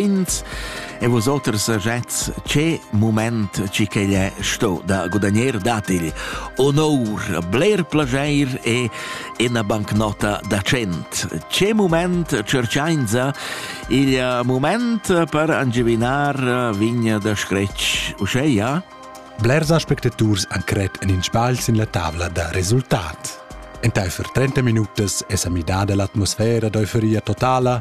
ins e vos oters sejets che moment ci che è sto da gudagnare datigl onor bler plageir e ina bancnota da cent che moment cerciainza il moment per angivinar vigna da scretsch uscheia? Blers aspectaturs han cret en in sbagl sin la tavla da resultat. Entaifer 30 minutas es a midada l'atmosfera d'euforia totala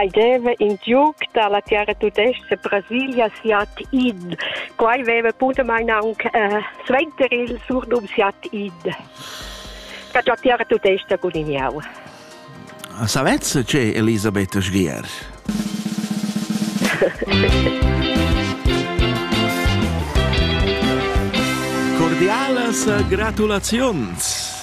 Ei deva in giug dalla tiara tudestga Brasilia siat id. Quai veva bunamain aunc eh, suenter il surnum siat id. Che già tiara tudestga gudignau. Savez che Elisabetta Sgier? Cordialas gratulaziuns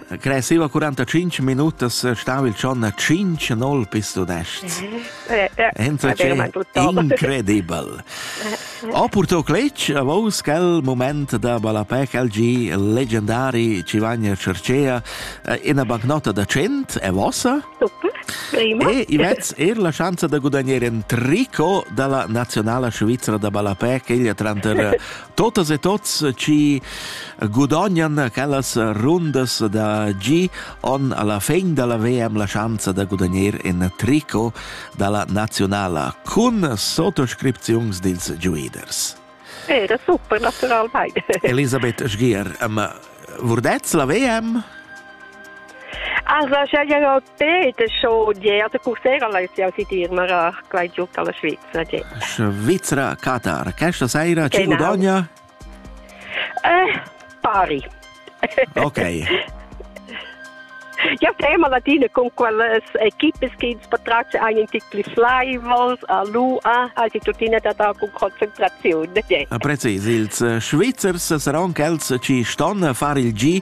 Cresceva 45 minutas stava il John a 5-0 pis donest. Entra incredibel. Ho purtò cletg a vos quel moment da ballapè quel gi leggendari Civagna Cercea ina bancnota da 100 è vossa? Super. Prima. E Ivets er la chance da gudagnare un tricot dalla nazionala svizzera da ballapè che egli tranter totas e tots chi gudognan quellas rundas da gi on alla fin dalla VM la schanza da gudagner in tricot dalla nazionala cun sottoscripziuns dils giuiders. Eh, das super, naturalmente. Elisabeth Sgier, ma vurdez la VM? Also, ja, ja, Sì, das ist schon je, also Coursera läuft ja seit immer quai giuc alla Svizzera. Je. Svizzera, Katar. Questa sera ci genau. guadagna? Eh, pari. Ok. Ja, tema latina con quelle equipe che patracce einen Titel Flyballs a l'UA, also tuttina da da con concentrazione. Ja. Precis, ils eh, Svizzers saranno quelli che stanno a fare il G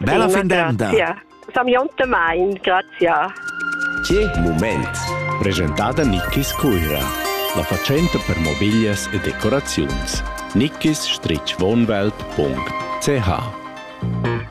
Bella fin d'emda! Sameontamain, grazia. Che mument! Presentada Nickis Cuira, la fatschenta per mobiglias e decoraziuns. nickisstreechwohnwelt.ch